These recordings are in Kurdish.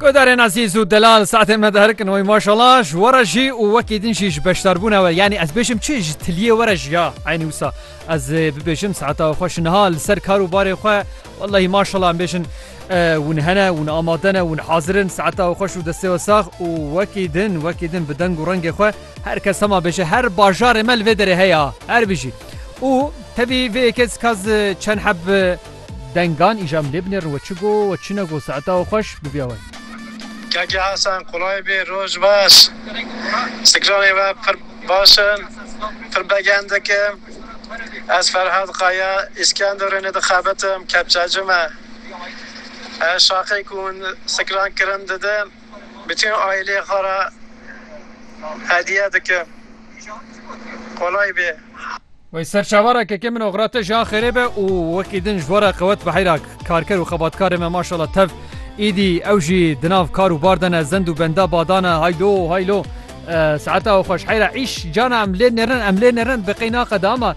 Gudarên azîz û delal saetê me diherikin oy maşala ji were jî û wekî din jî ji beşdarbûna we yanî ez bêjim çi ji tiliyê were jî ya eynî wisa ez bibêjim saeta xwe ji niha li ser kar û barê xwe wellahî maşala em bêjin hûn hene hûn amade ne hûn hazirin saeta xwe û destê we sax û wekî din wekî din bi deng û rengê xwe her kes hema bêje her bajarê me li vê derê heya her bijî û tevî vê yekê kaz çend heb Dengan îja milê binêrin we çi go we çi nego saeta we xweş bibiya we. Keke Hasan kolay bê roj baş sikranê we pir baş in pir begen dikim ez Ferhad Kaya Îskenderunê dixebitim kepçecime her şaqê ku hûn sikran kirin didim. Bütün aileye xwe re hediye dikim. Kolay bê. Wey serçava ra kekê min oxira te jî axêrê be û wekî din ji bo re qewet bi heyra karker û xebatkarê me maşallah tev îdî ew jî di nav kar û bar de ne zend û benda bada ne haylo haylo saeta xweş heyra îş cana em lê nêrin em lê nêrin bi qey naqede ama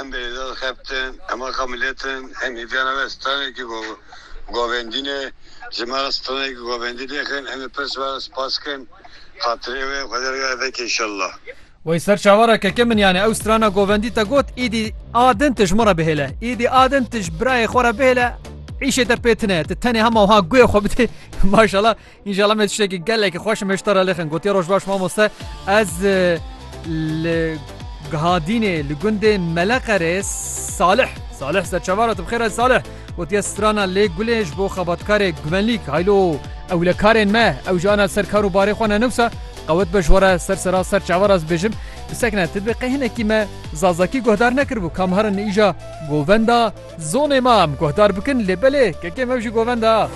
Em bêrîza dixebtin, em axa millet in, em hêviyana me stranekî govendîn e. Ji me re stranekî govendî nêxin, em ê pirs werin spas kin. Xatirê wê Xwedê re gere veke înşellah. Wey ser çavara keke min yani ew strana govendî te got îdî a din tu ji min re bihêle, îdî a din tu ji birayê xwe re bihêle îşê te pê tune ye, tu tenê hema wiha guhê xwe bidê maşallah Înşallah me tiştekî gelekî xweş û me ji te re lixin. Gotiye roj baş mamoste. Ez li Gihadînê li gundê Meleqerê Salih Salih serçavara tu bixêre Salih gotiye strana lê gulê ji bo xebatkarê guvenlîk haylo ewlekarên me ew ji ana ser kar û barê xwe ne newsa qewet be ji were ser sera ser çavara ez bêjim bisekne tu bi qehinekî me zazakî guhdar nekiribû kam herin îja govenda zonê ma em guhdar bikin lê belê kekê me jî govenda